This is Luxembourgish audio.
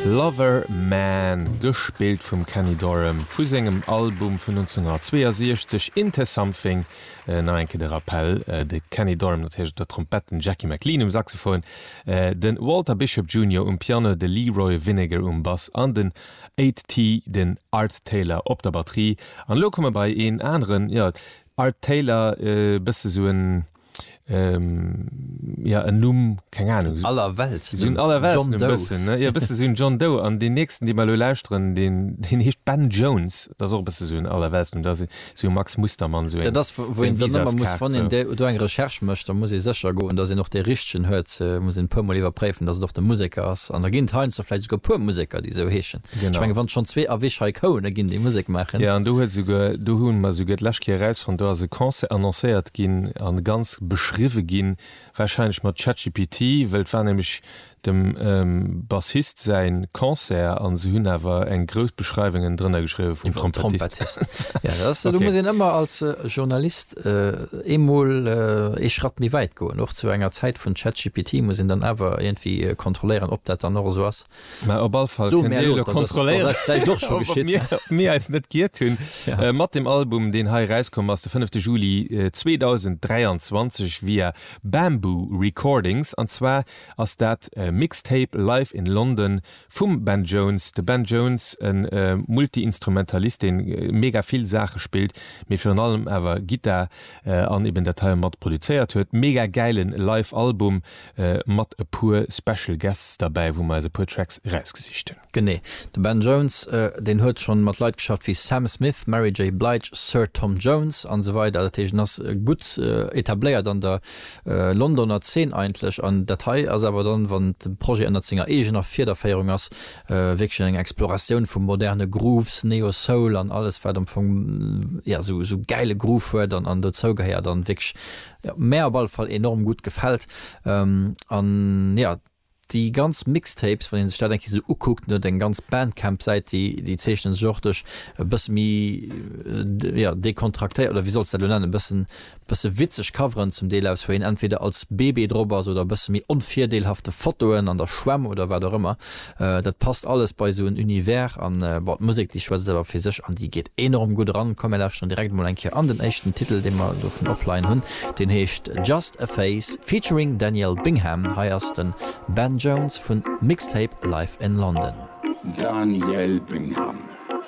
Lover Man, gespillt vum Kenny Dorham, vu sengem Album vun 1962 Into Something. Nach eng Kéier de Rappell, de Kenny Dorham natierlech op der Trompett, den Jackie McLean um Saxophon, de Walter Bishop Junior um Piano, de Leroy Vinnegar um Bass an den Ait T, den Art Taylor, op der Batterie. An elo komme mer bei een aneren, jo, Art Taylor, e bësse sou en, ähm, ja en Numm keng Ahnung so, aller Welt so un aller Welt John Doe bëssen ja bësse so un John Doe an den nächsten dee mer lo lauschteren den den heescht Ben Jones dat och bësse so un aller Welt Numm dat so Max Mustermann so dat ass wou een dann ëmmer muss wann een dee do eng Recherche mécht da muss ee sécher goen dass een och dee richtegen huet muss een e puer mol iwwerpréifen dass et och de Museker ass an da ginn et heiansdo vläicht esouguer e puer Museker déi esou heeschen. Genau. Ech menge wann schonn zwee Avis hei kouene ginn, déi Musek maachen. Jo, an do huet esouguer, do hu mer esouguer d'lescht Kéier erausfonnt, do ass e Concert annoncéiert ginn a ganz beschriwwe ginn, warscheinlech mat ChatGPT, wëll et war nämlech dem Bassist säi Concert a se hunn awer eng grouss Beschreiwungen drënner geschriwwe vum Trompettist. Jo, dat ass, do muss een ëmmer als Journalist eemol ee Schratt méi wäit goen. Och zu enger Zäit vun ChatGPT muss een dann awer iergendwéi kontrolléieren, ob dat dann och esou ass. Mä op all Fall kënnt Dir elo kontrolléieren, ob mir eis net giert hunn mat dem Album, deen hei erauskomm ass de 5. Juli 2023 via Bamboo Recordings. An zwar ass dat Mixtape Live in London vum Ben Jones. De Ben Jones, e Multiinstrumentalist, dee mega vill Saache spillt, mee virun allem awer Gittar an eben dat hei mat produzéiert huet. Mega gäile Live-Album, mat e puer Special Guests derbäi, wou mer eis e puer Tracks erausgesicht hunn. Genee. De Ben Jones, deen huet schonn mat Leit geschafft wéi Sam Smith, Mary J. Blige, Sir Tom Jones an esou weider. Dat heescht, en ass gutt etabléiert an der Londoner Zeen eigentlech. An dat hei ass awer dann, wann de Projet ënnert senger eegener Fiederféierung ass, wierklech eng Exploratioun vu moderne Grooves, Neo-Soul an alles, wat am Fong, jo, esou gäile Groove huet an dozougehéiert an wierklech Jo mär op alle Fall enorm gudd gefällt an ja déi ganz Mixtapes wann een sech dat eng Kéier sou ukuckt, net eng ganz Bandcamp Säit déi déi zeechnen sech och duerch e bësse méi ja décontractéiert oder wéi soll ech dat elo nennen bëssen bësse witzeg Coveren zum Deel aus wou een entweder als Bébé drop ass oder bësse méi onvirdeelhafte Fotoen an der Schwemm oder wat och ëmmer Dat passt alles bei esou en Univers an, bon, d'Musek déi schwätzt awer fir sech an déi geet enorm gutt eran. Komm mir lauschteren direkt emol eng Kéier an den éischten Titel dee mer dovun opleien hunn, deen heescht Just A Phase featuring Daniel Bingham. Hei ass den Ben Jones vun Mixtape Live In London. Daniel Bingham